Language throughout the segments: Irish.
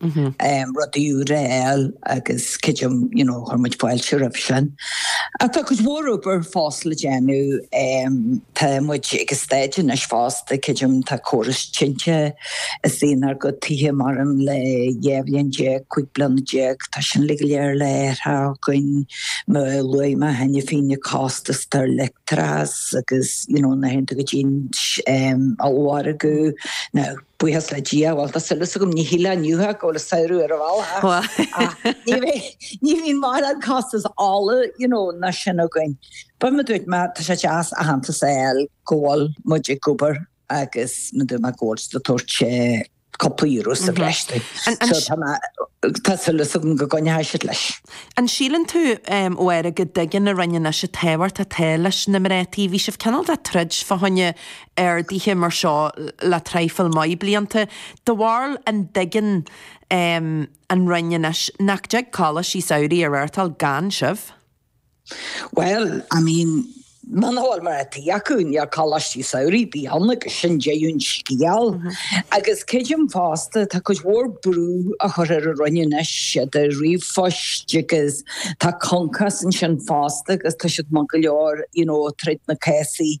rudaí úra a fháil agus creidim you know chuir muid fáilte roimh sin. Ach tá cuid mhór obair fós le déanamh. Tá muid ag staid anois fosta creidim tá córas tinte ins an ár gcuid tithe mórán le dhá bhliain déag, cúig bliana déag, tá sin uilig go léir le hathrú againn. Mar luaigh mé cheana féin na costais ar leictreachas agus you know na huaireanta go dtí an ollmhargadh, now, Buíochas le Dia, bhuel, tá súil as agam, ní shílfeá inniu go bhfuil an samhradh ar an bhealach, ach ní bhíonn mórán costas ola, you know, ná sin againn. But, mar dúirt mé, tá sé deas aitheantas a fháil go bhfuil muid ag obair agus, mar dúirt mé, go bhfuil tú ag tabhairt cúpla euro sa bhreis duit. So tá mé, tá súil as agam go gcoinneoidh siad leis. An síleann tú, a Mháire, go dtuigeann an Roinn anois an tábhacht atá leis na mná tí? Bhí sibh cineál de troid fá choinne ardaithe mar seo le traidhfil mhaith blianta. Do bharúil an dtuigeann an Roinn anois nach dtig coláistí samhraidh a reáchtáil gan sibh. Bhuel, I mean, muna bhfuil mná tí acu, níl coláistí samhraidh ar bith ann agus sin deireadh an scéal. Agus creidim fosta, tá cuid mhór brú á chur ar an Roinn anois idir ríomhphoist agus tá CONCOS ansin fosta agus tá siad maith go leor, you know, troid na cásaí.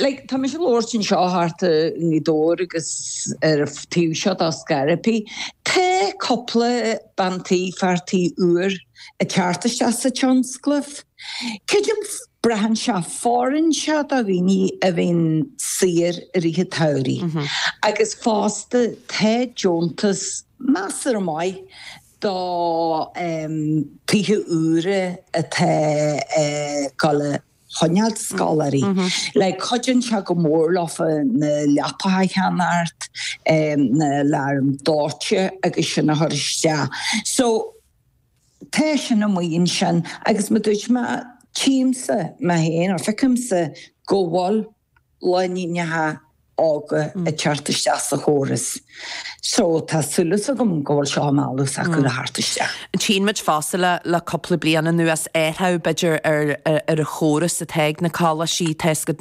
Like, tá mise ag labhairt anseo thart i nGaoth Dobhair agus ar an taobh seo dá Scairbí, tá cúpla bean tí, fear tí úr ag teacht isteach sa tionscal. Creidim, braitheann sé, fóireann sé do dhaoine a bhíonn saor i rith an tsamhraidh agus fosta tá deontas, measartha maith do eh, tithe úra atá ag gabháil a. choinneáil scoláirí. Like, cuidíonn sé go mór leofa na leapacha a cheannacht, na aláraim dóite agus sin a chur isteach. So, tá sin amuigh ansin agus mar a dúirt mé, tchímse mé féin, or feicimse go bhfuil lánúineacha óga ag teacht isteach sa chóras. So tá súil as agam go bhfuil seo ar eolas acu le theacht isteach. Tchíonn muid fosta le cúpla bliain anuas athrach, b'fhéidir, ar an chóras atá ag na coláistí, tá a fhios agat,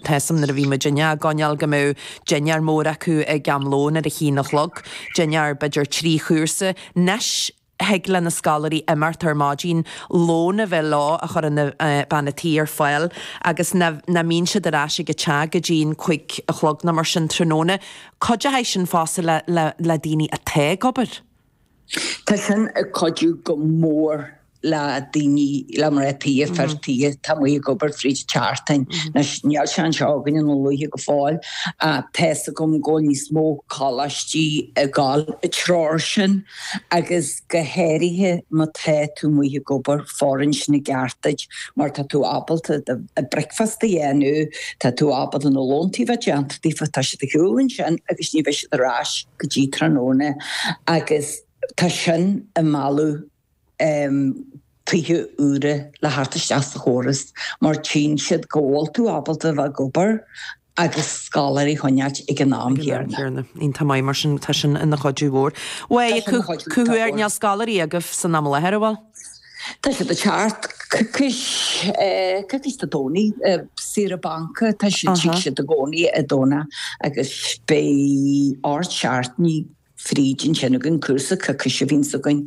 tá a fhios agam nuair a bhí muidinne á gcoinneáil go mbeadh dinnéar mór acu ag am lóin ar a haon a chlog, dinnéar b'fhéidir trí chúrsa. 'Nois, thig le na scoláirí imeacht ar maidin, lón a bheith leo a chuireann bean a' tí ar fáil agus nach mbíonn siad ar ais ag a teach go dtí'n cuig a chlog nó mar sin tráthnóna. Cuideochaidh sin fosta le le daoine atá ag obair. Tá sin ag cuidiú go mór le daoine le mná tí, fir tí atá amuigh ag obair fríd tseachtain. Anois níl sé anseo againne na luaithe go fóill ach tá's agam go bhfuil níos mó coláistí ag dul i dtreo sin. agus go háirithe má tá tú amuigh ag obair, fóireann sin i gceart duit mar tá tú ábalta do bhricfeasta a dhéanamh, tá tú ábalta na lóntaí a bheith déanta daofa, tá siad ar shiúl ansin agus ní bheidh siad ar ais go dtí tráthnóna agus tá sin ag mealladh tithe úra le theacht isteach sa chóras mar tchíonn siad go bhfuil tú ábalta a bheith ag obair. agus scoláirí a choinneáilt ag an am chéanna. Iontach maith mar sin tá sin ina chuidiú mhór. Bhuel, ag caint ar níl scoláirí agaibh san am i láthair, an bhfuil? Tá siad ag teacht, coicís Dé Domhnaigh, saoire banca, tá siad tig siad i gcónaí ar an Domhnach agus beidh ocht seachtainí fríd ansin againn, cúrsa coicíse a bhíonn againn.